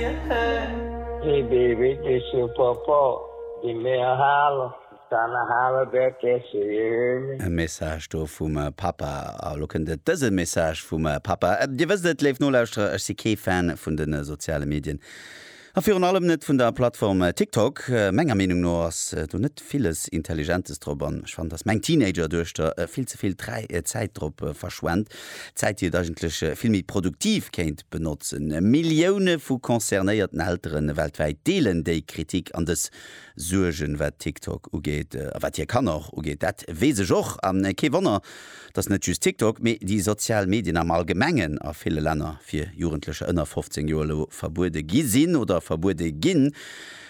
Hee Baby, dech jo Papa, dee mär halen, d'Anna halen der dech jo. E Message do vum Papa. A lo kënnt et, dëse Message vum Papa. Dir wësst et, léif Nolauschterer, ech si kee Fan vun de soziale Medien a virun allem net vun der Plattform TikTok. Menger Meenung no ass do net villes Intelligentes drop an ech fannen, dass meng Teenager-Duechter vill ze vill Zäit drop verschwent. Zäit, déi et eigentlech vill méi produktiv kéint benotzen. Millioune vu concernéierten Eltere weltwäit deelen déi Kritik an dës Suergen, wat TikTok ugeet a wat hir Kanner och ugeet. Dat weess ech och a kee Wonner, datt net just TikTok, mee déi sozial Medien am Allgemengen a ville Länner fir Jugendlecher ënner 15 Joer elo verbuede gi sinn oder verbuede ginn.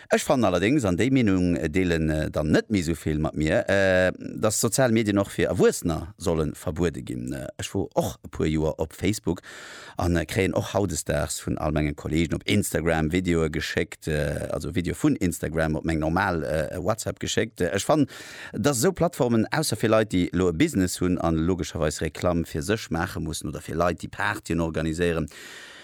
Ech fannen allerdéngs, an déi Meenung deelen dann net méi esou vill mat mir, dass sozial Medien och fir Erwuessener solle verbuede ginn. Ech wor och e puer Joer op Facebook an kréien och hautdesdaags vun all mengen Kollegen op Instagram Videoe geschéckt, also Videoe vun Instagram op meng normal WhatsApp geschéckt. Ech fannen, dass esou Plattformen, ausser fir Leit déi elo e Business hunn an logescherweis Reklamm fir sech maache mussen oder fir Leit déi Partyen organiséieren,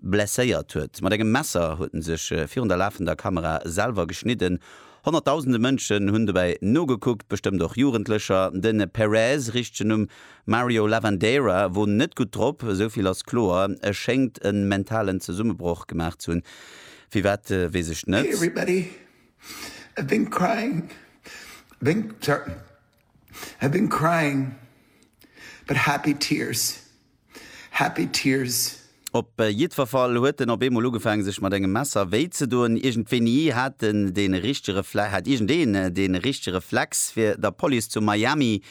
Blesséiert huet. Mat engem Messer huet en sech virun der lafender Kamera selwer geschnidden. Honnertdausende Mënschen hunn dobäi nogekuckt, bestëmmt och Jugendlecher. De Perez, richtegen Numm Mario Lavandeira, wor net gutt drop, esou vill ass kloer. E schéngt e mentalen Zesummebroch gemaach ze hunn, firwat weess ech net. Happy tears. Op jiddwerfall huet en op eemol ugefaang sech mat engem Messer wéi ze doen. Iergendwéini hat en de richtege hat iergendeen de richtege Reflex fir der Police zu Miami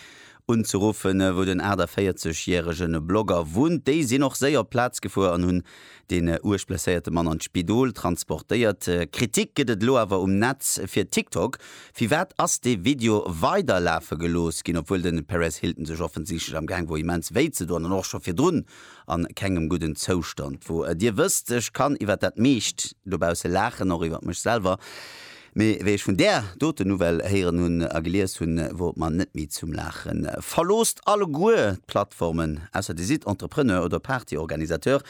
unzeruffen, wou den 48 järegen Blogger wunnt. Déi sinn och séier op d'Plaz gefuer an hunn Den uerg blesséierte Mann an d'Spidol transportéiert. Kritik gëtt et elo awer um Netz fir TikTok. Firwat ass dee Video weider lafe gelooss ginn, obwuel den Perez Hilton sech offensichtlech am Gaang wor immens wéi ze doen an och scho virdrun an kengem gudden Zoustand wor. Dir wësst, ech kann iwwert dat meescht dobausse laachen, och iwwert mech selwer. Mee wéi ech vun där doten Nouvelle héieren hunn a gelies hunn, wor et mer net méi zum Laachen. Verloosst alleguer d'Plattformen, ausser Dir sidd Entrepreneur oder Partyorganisateur,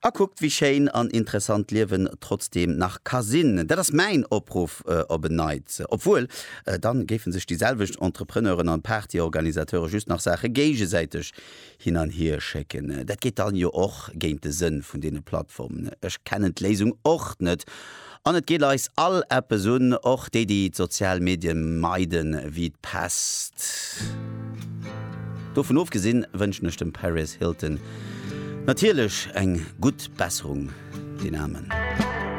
a kuckt wéi schéin an interessant d'Liewen trotzdeem nach ka sinn. Dat ass mäin Opruff op en Neits. Obwuel, dann géifen sech déi selwecht Entrepreneuren an Partyorganisateure just nach Saache géigesäiteg hin an hier schécken. Dat geet dann jo och géint de Sënn vun deene Plattformen. Ech kennen d'Léisung och net an et geet eis all eppes un, och déi déi d'sozial Medien meide wéi d'Pest. Dovun ofgesinn wënschen ech dem Paris Hilton natierlech eng gutt Besserung, den Aarmen.